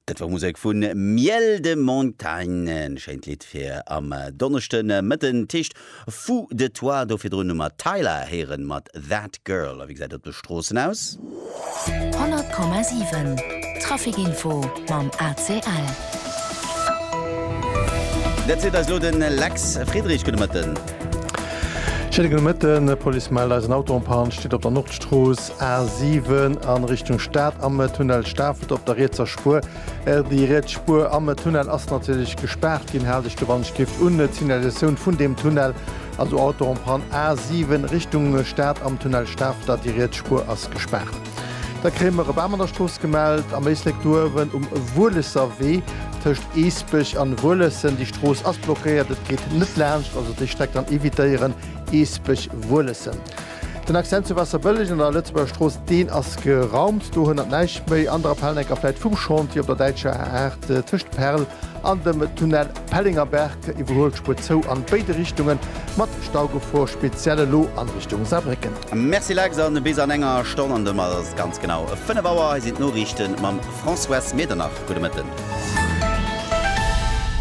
Dat war Musek vu Miel de Montagne, e schéint Lidd fir am Donneschde Mëtten. D'Heescht Fou de toi. Do virdrun hu mer Tyla héieren mat That Girl. A wéi gesäit et op de Stroossen aus? 100,7 Traficinfo mam ACL. Dat seet eis elo de Lex Friedrich. Gudde Mëtten. Schéine gudde Mëtten. D'Police mellt eis en Auto en Panne steet op der Nordstrooss. A7 an Richtung Staat am Tunnel Stafelt op der rietser Spuer. Déi riets Spuer am Tunnel ass natierlech gespaart ginn. Haalt Iech do wann ech giff un d'Signalisatioun vun deem Tunnel. Also Auto en panne A7 Richtung Staat am Tunnel Stafelter. Déi riets Spuer ass gespaart. Da kréie mer e Bam an der Strooss gemellt am Éislek do uewen um Wuelesser Wee tëscht Eesbech an Wuelessen. Déi Strooss ass blockéiert, et geet net laanscht. Also déi Streck dann evitéieren Eesbech, Wuelessen. Den Accent zu Wasserbëlleg an der Lëtzebuerger Strooss, deen ass geraumt, do hënnert näischt méi. Ander Appellen, enker vläit vum Chantier op der däitscher A8 tëscht Perl an dem Tunnel Pellengerberg, iwwerhuelt d'Spuer zou an béide Richtungen, mat Staugefor, speziell elo an Richtung Saarbrécken. Merci Lex, a bis an enger Stonn an domat ass et ganz genau 5 Auer. Hei sinn d'Noriichte mam Françoise Medernach. Gudde Mëtten.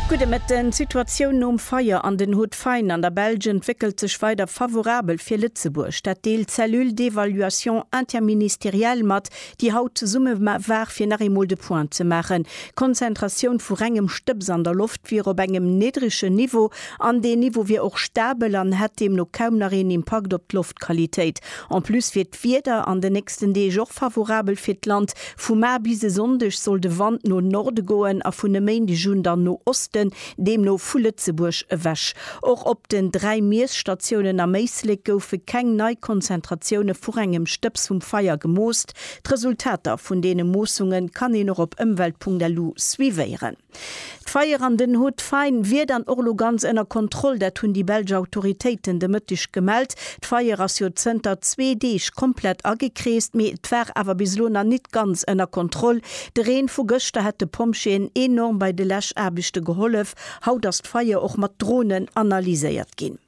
Gudde Mëtten. D'Situatioun nom Feier an den. D'Fein an der Belsch entwéckelt sech weider favorabel fir Lëtzebuerg. Dat deelt d'Cellule d'évaluation interministérielle mat, déi haut zesumme war fir nach eemol de Point ze maachen. D'Konzentratioun vu rengem Stëbs an der Loft wier op engem niddregen Niveau an deen Niveau wier och stabel an hätt deemno kaum nach een Impakt op d'Loftqualitéit. En plus wier d'Wieder an den nächsten Deeg och favorabel fir d'Land. Vu mar bis e Sonndeg soll de Wand no Norde goen a vun e Méindeg un dann no Osten. deemno vu Lëtzebuerg ewech. Och op den dräi Miesstatiounen am Éislek goufe keng nei Konzentratioune vu rengem Stëbs vum Feier gemoost. D'Resultater vun deene Moossunge kann een och op ëmwelt.lu suivéieren. D'Feier an den Hautes Fagnes wier dann och elo ganz ënner Kontroll, dat hunn déi belsch Autoritéiten de Mëtteg gemellt. D'Feier ass jo zënter zwee Deeg komplett agekreest, mee et war awer bis elo nach net ganz ënner Kontroll, De Reen vu gëschter hätt de Pompjeeën enorm bei de Läschaarbechte gehollef. Haut ass d'Feier och mat Dronen analyséiert ginn.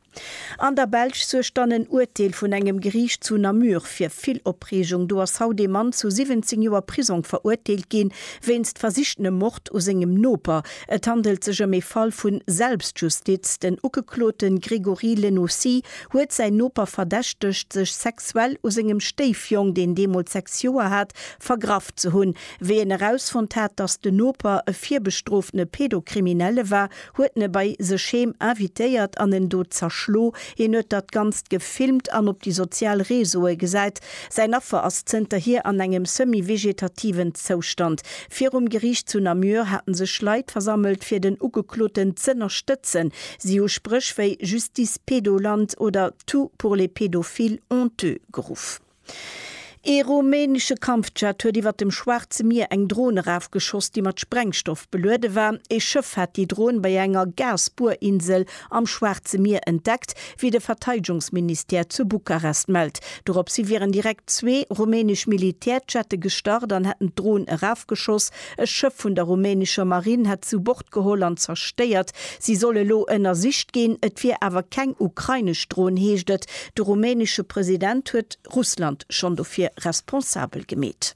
An der Belsch suergt dann en Urteel vun engem Geriicht zu Namur fir vill Opreegung. Do ass haut ee Mann zu 17 Joer Prisong verurteelt ginn, wéinst versichtenem Mord u sengem Noper. Et handelt sech ëm ee Fall vu Selbstjustiz. Den Ugeklote Grégory Lenaussy huet säin Noper verdächtegt, sech sexuell u sengem Stéifjong, deen deemools 6 Joer hat, vergraff ze hunn. Wéi en erausfonnt hat, dass den Noper e virbestroftene Pedokriminelle war, huet en e bei sech heem invitéiert an en do zerschlo. Hien huet datt Ganzt gefilmt an op déi sozial Reseaue gesäit. Säin Affer ass zënterhier an engem semi-vegetativen Zoustand. Virum Geriicht zu Namur haten sech Leit versammelt, fir den Ugekloten z'ënnerstëtzen. Si hu Spréch wéi Justice Pédoland oder Tout pour les pédophiles honteux geruff. Ee rumänesche Kampfjet huet iwwer dem Schwaarze Mier eng Dron erafgeschoss, déi mat Sprengstoff beluede war. Ee Schëff hat déi Dron bei enger Gasbuerinsel am Schwaarze Mier entdeckt, wéi de Verteidegungsministère zu Bukarest mellt. Dorops hi wieren direkt zwee rumänesch Militärjette gestart an hätten d'Dron erafgeschoss. E Schëff vun der rumänescher Marinn hätt zu Bord geholl an zerstéiert. Si soll elo ënnersicht ginn. Et wier awer keng ukrainesch Dron, heescht et. De rumänesche President huet Russland schonn dofir responsabel gemeet.